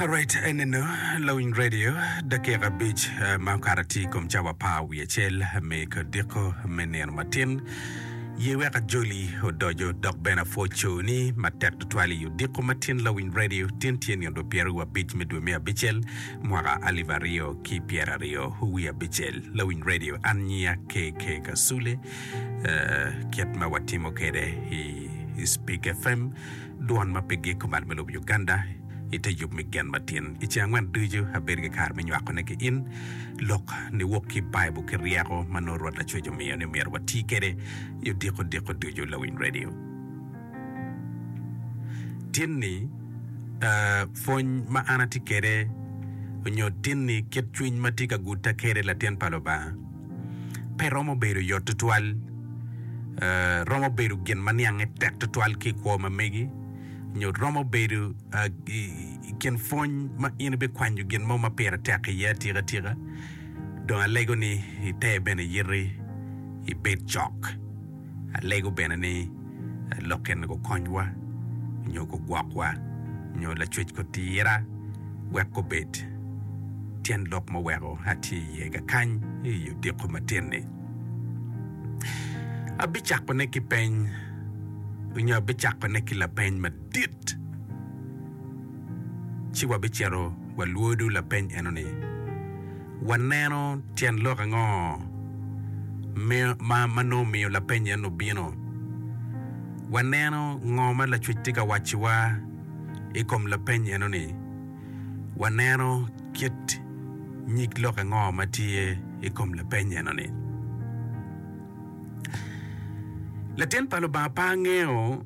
Alright, eneno lawiny radio dakika abic eh, ma okato tye i kom cawa apar wiye acel me kodiko me nino matin ye wek ajoli odojo dok bene apwod coyo ni matek tutwal i odiko matin lawiny radio tin tye nino dwe pyeraryo abic me dwe me abicel mwaka alip aryo ki pyeraryo wiye abicel lawiny radio an nyiya KK Kasule eh, kit ma watimo kede i i Speak FM Dwon ma pigi kumal me lobo Uganda i te yub me gen matin. I ceng angwen ducu abedo ki kare me nywakone ki in lok niwok ki Baibul ki ryeko ma nongo Rwot Lacwec omiyo ni myero wati kwede i odiko diko ducu. Lawiny redio tinni pwony ma an atye kwede onyo tinni kit cwiny ma tye ka gutta kwede latin pa Lubanga? pe romo bedo yot tutwal. Romo bedo gin ma niange tek tutwal ki i kwo ma megi, nyo romo bedo i kin pwony ma in ibikwanyo gin mo ma pire tek iye atikatika. Dong alego ni ite bene yiti ibed cok. Alego bene ni lok kene gukonywa nyo gugwokwa nyo lacwec kutira wek gubed. Tyen lok ma oweko atye iye ka kany i odiko matin-ni, abicakone ki peny nyo abicakone ki lapeny madit. Ci wabicito walwodo lapeny enoni. Waneno tyen lok ango ma nongo omiyo lapeny ennu obino? Waneno ngo ma Lacwec tye ka wacciwa i kom lapeny ennu-ni? Waneno kit nyig lok ango ma tye i kom lapeny ennu-ni? Latin pa Lubanga pe angeyo.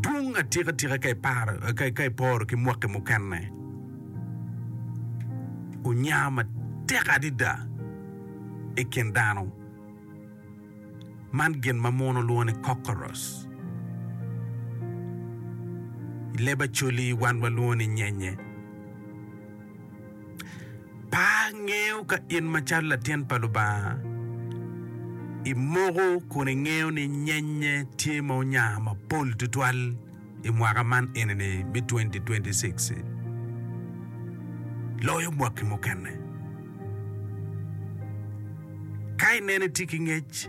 dwong atikatika ka iparo, ka, ka iporo ki mwaki mukene. Onya matek adida i kin dano man gin ma muno lwongo ni cockroach. I leb Acholi wan walwongo ni nyenye. Par ngeyo ka in macalo latin pa Lubanga imoko kun ingeyo ni nyenye tye ma onyar mapol tutwal i mwaka man eni ni me twenty twenty six ci loyo mwaki mukene. Ka ineno itye ki ngec.